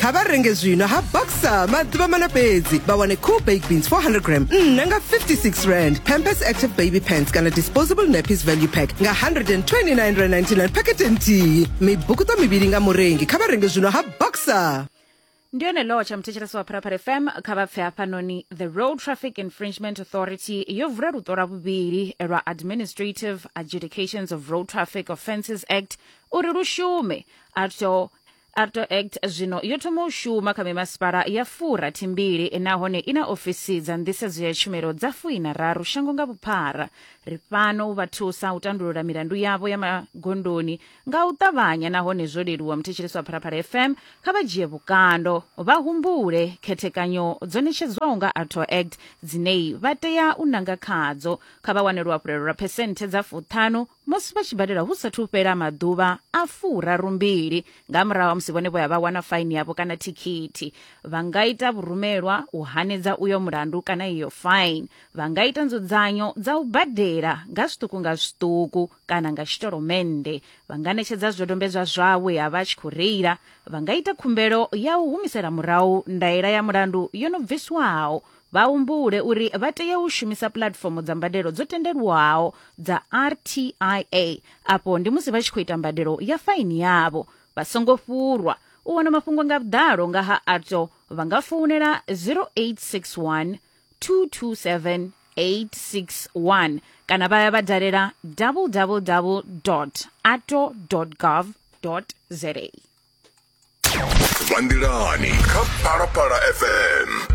kha vha renge zwino ha boxer maḓuvha mana fhedzi vha wane cool baked beans 400 gram nṋa nga 56 rand pampers active baby pants kana disposable nappies value pack nga 129 rand 99 pakete nthihi mibukuṱo mivhili nga murengi kha vha renge zwino ha boxer ndi yone law tsha muthetshelesi wa pharapara fm kha vha pfe hafhanoni the road traffic infringement authority yo vula luṱo lwa vhuvhili lwa administrative adjudications of road traffic offences act uri lu shume article arto act zwino yo thoma u shuma kha mimasipala ya fura thimbili nahone i na ofisi dza nḓisedzo ya tshumelo dza fuina raru shango nga vhuphara ri fhano u vha thusa u tandulula milandu yavho ya magondoni nga u ṱavhanya nahone zwo leluwa muthetshelesi wa phalaphala fm kha vha dzhie vhukando vha humbule khethekanyo dzo ṋetshedzwaho nga arto act dzinei vha tea u nanga khadzo kha vha wane luhafhulelo lwa phesenthe dza fuṱhanu musi vha tshi badela hu sathu fhela maḓuvha a furaru mbili nga murahu ha musi vhone vho ya vha wana faini yavho kana thikhithi vha nga ita vhurumelwa u hanedza uyo mulandu kana iyo faini vha nga ita nzudzanyo dza u badela nga zwiṱuku nga zwiṱuku kana nga tshitolomennde vha nga ṋetshedza zwidodombedzwa zwawe ha vha tshi khou reila vha nga ita khumbelo ya u humisela murahu ndaela ya mulandu yo no bviswaho vha humbule uri vha tea u shumisa puḽatifomo dza mbadelo dzo tendelwaho dza RTIA afho ndi musi vha tshi khou ita mbadelo ya faini yavho vha songo fhurwa u wana mafhungo nga vhuḓalo nga ha ARTO vha nga founela 0861 227 861 kana vha ya vha dalela www ato gov za vha nḓilani kha phalaphala fm